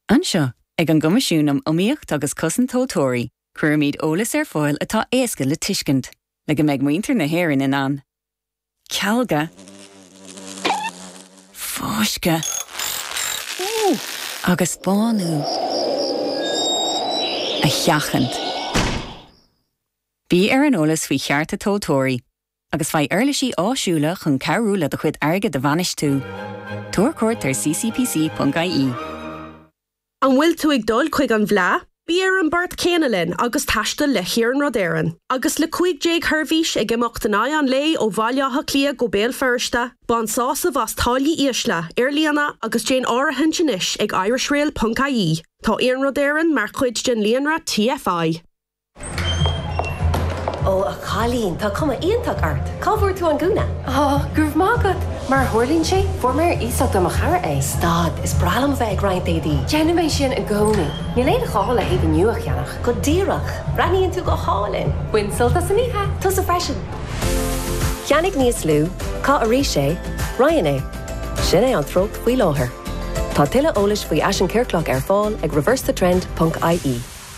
Anseo, ag an gCoimisiún um Iomaíocht agus Cosaint Tomhaltóirí, cuirimid eolas ar fáil atá éasca le tuiscint, le go mbeidh muintir na hÉireann in ann cealgadh, fáisceadh agus bánú a sheachaint. Bí ar an eolas faoi chearta tomhaltóirí agus faigh uirlisí áisiúla chun cabhrú leat do chuid airgid a bhainistiú. Tabhair cuairt ar ccpc.ie. An bhfuil tú ag dul chuig an bhFleadh? Bí ar an bport céanna linn agus taistil le hIarnród Éireann. Agus le 15 sheirbhís ag imeacht in aghaidh an lae ó Bhaile Átha Cliath go Béal Feirste, bain sásamh as táillí ísle ar líne agus déan áirithint anois ag irishrail.ie. Tá Iarnród Éireann mar chuid den líonra TFI. Ó a chailín, tá cuma iontach ort! Cá bhfuair tú an gúna? Ó, go raibh maith agat! Mar a tharlaíonn sé, fuair mé ar iasacht ó mo chara é. Stad, is breá liom a bheith ag roinnt éadaí! Déanaim é sin i gcónaí. Níl aon ghá le héadaí nua a cheannach. Go díreach! Breathnaíonn tú go hálainn! Bain sult as an oíche! Tusa freisin! Ceannaigh níos lú, caith arís é, roinn é. Sin é an treocht faoi láthair. Tá tuilleadh eolais faoi fhaisean ciorclach ar fáil ag reversethetrend.ie.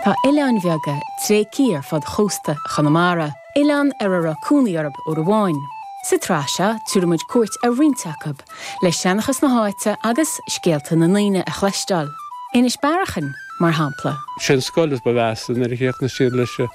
Tá oileáin bheaga tréigthe ar fud chósta Chonamara, oileáin ar a raibh cónaí orthu uair amháin. Sa tsraith seo tabharfaidh muid cuairt ar roinnt acu, le seanchas na háite agus scéalta na ndaoine a chloisteáil. Inis Bearachain, mar shampla. Sé'n scoil is ba mheasa nuair a chríochnaigh siad leis.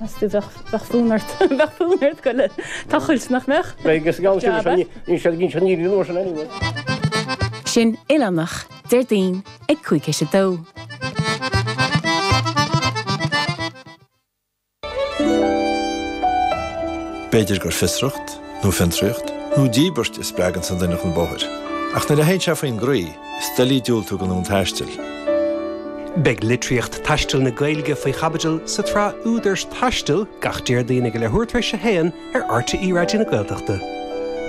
As tú bheadh bheadh fúm ort bheadh fúm ort go le tochailt nach mbeadh? Beidh gus gabhas Jab é. níl níl sé ginn sin níl sin anyway. Sin oileánach, Déardaoin ag cúig tar éis a dó. B'fhéidir gur fiosracht, nó fiontraíocht, nó díbirt a spreaganns an duine chun bóthair. Ach nuair a théann sé faoin gcroí, Is doiligh diúltú don fhonn taistil. Beidh litríocht taistil na Gaeilge faoi chaibidil sa tsraith Údar Taistil gach Déardaoin ag leathuair tar éis a haon ar RTÉ Raidió na Gaeltachta.